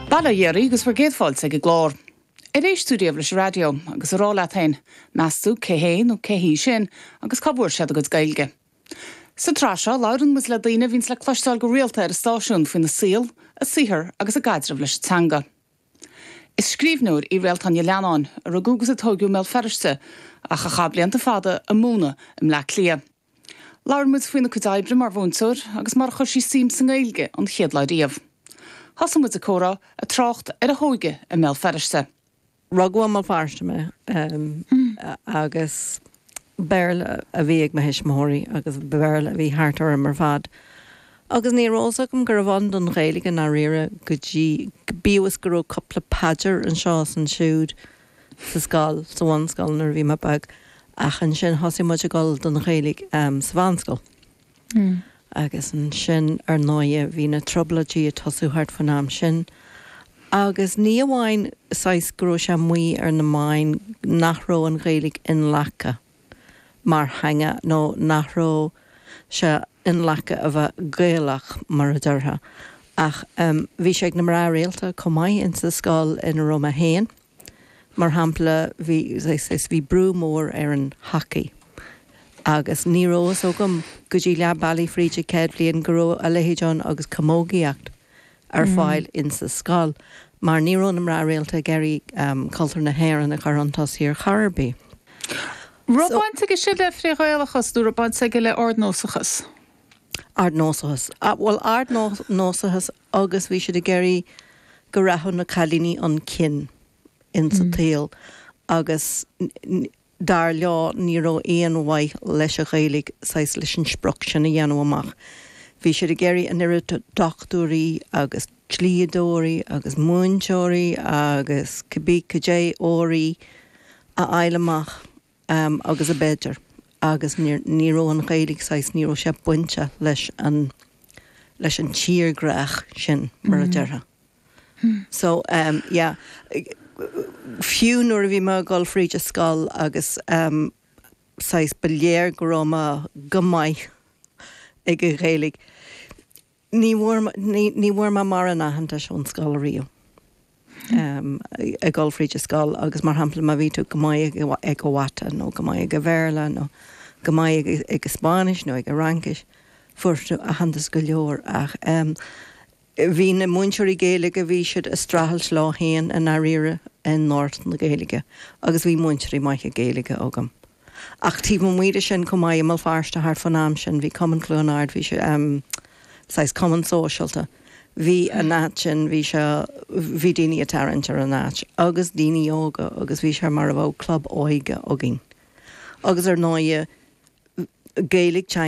Bail ó Dhia oraibh agus bhur gcéad fáilte ag an gclár. Ar éist tú riamh leis an raidió? agus a rá leat féin, meas tú cé hé nó cé hí sin agus cá bhfuair siad a gcuid Gaeilge? Sa tsraith seo, labhrann muid le daoine a bhíonns le cloisteáil go rialta ar an stáisiún faoina saol, a saothar agus a gcaidreamh leis an teanga. Is scríbhneoir í Réaltán Ní Leannáin, a rugadh agus a tóigeadh i mBéal Feirste, ach a chaith blianta fada ag múineadh i mBleá Cliath. Labhair muid faoina cuid oibre mar mhúinteoir agus mar a chuir sí suim sa nGaeilge an chéad lá riamh. Thosaigh muid an comhrá, ag trácht ar a hóige i mBéal Feirste. Rugadh i mBéal Feirste mé agus Béarla a bhí ag mo thuismitheoirí agus Béarla a bhí thart orm ar fad. Agus ní raibh fhios agam go raibh ann don Ghaeilge i ndáiríre go dtí, bíodh is go raibh cúpla paidir anseo is ansiúd. sa scoil, sa bhunscoil nuair a bhí mé beag ach ansin thosaigh muid ag dul don Ghaeilge sa mheánscoil. Agus ansin ar ndóighe bhí na Trioblóidí ag tosú thart faoin am sin agus ní amháin saghas go raibh sé amuigh ar na meáin nach raibh an Ghaeilge inghlactha, mar theanga nó nach raibh sé inghlactha a bheith Gaelach, mar a déarfá. Ach bhí sé ag na mná rialta chomh maith ins an scoil ina raibh mé féin. Mar shampla, bhí, bhí brú mór ar an hacaí agus ní raibh fhios agam go dtí leath bealaigh fríd an chéad bhliain go raibh a leithéid ann agus camógaíocht. ar fáil insa scoil mar ní raibh na mná rialta ag iarraidh cultúr na hÉireann a chur chun tosaigh ar chor ar bith. So. Raibh baint aige sin le frith-Ghaelachas nó raibh baint aige le ardnósachas? Ardnósachas. Bhuel ardnósachas agus bhí siad ag iarraidh go rachadh na cailíní 'un cinn insa tsaol agus Dar leo ní raibh aon mhaith leis an Ghaeilge saghas leis an sprioc sin a bhaint amach. Bhí siad ag iarraidh an oiread dochtúirí agus dlíodóirí agus múinteoirí agus cibé caidé óirí a fháil amach agus ab fhéidir agus ní raibh an Ghaeilge saghas, ní raibh sé bainte leis an tírdhreach sin mar a déarfá. So ehm yeah fiú nuair a bhí mé ag dul fríd an scoil agus ehm saghas ba léir go raibh mé go maith ag an Ghaeilge ní bhfuair mé, ní bhfuair mé mórán aitheantais ón scoil ariamh ehm ag dul fríd an scoil agus mar shampla má bhí tú go maith ag an mhata nó go maith ag an Bhéarla nó go maith ag an Spáinnis nó ag an Fhraincis fuair tú aitheantas go leor ach ehm Bhí na múinteoirí Gaeilge, bhí siad a' streachailt leo fhéin i ndairíre i ngort na Gaeilge agus bhí múinteoirí maithe Gaeilge agam. Ach taobh amuigh de sin chomh maith i mBéal Feirste thart fán am sin bhí Cumann Chluain Ard, bhí sé, em, saghas cumann sóisialta. Bhí an áit sin, bhí sé, bhí daoine a' tarraingt ar an áit agus daoine óga agus bhí sé mar a bheadh club óige againn. Agus ar ndóighe Gaeilge, teanga.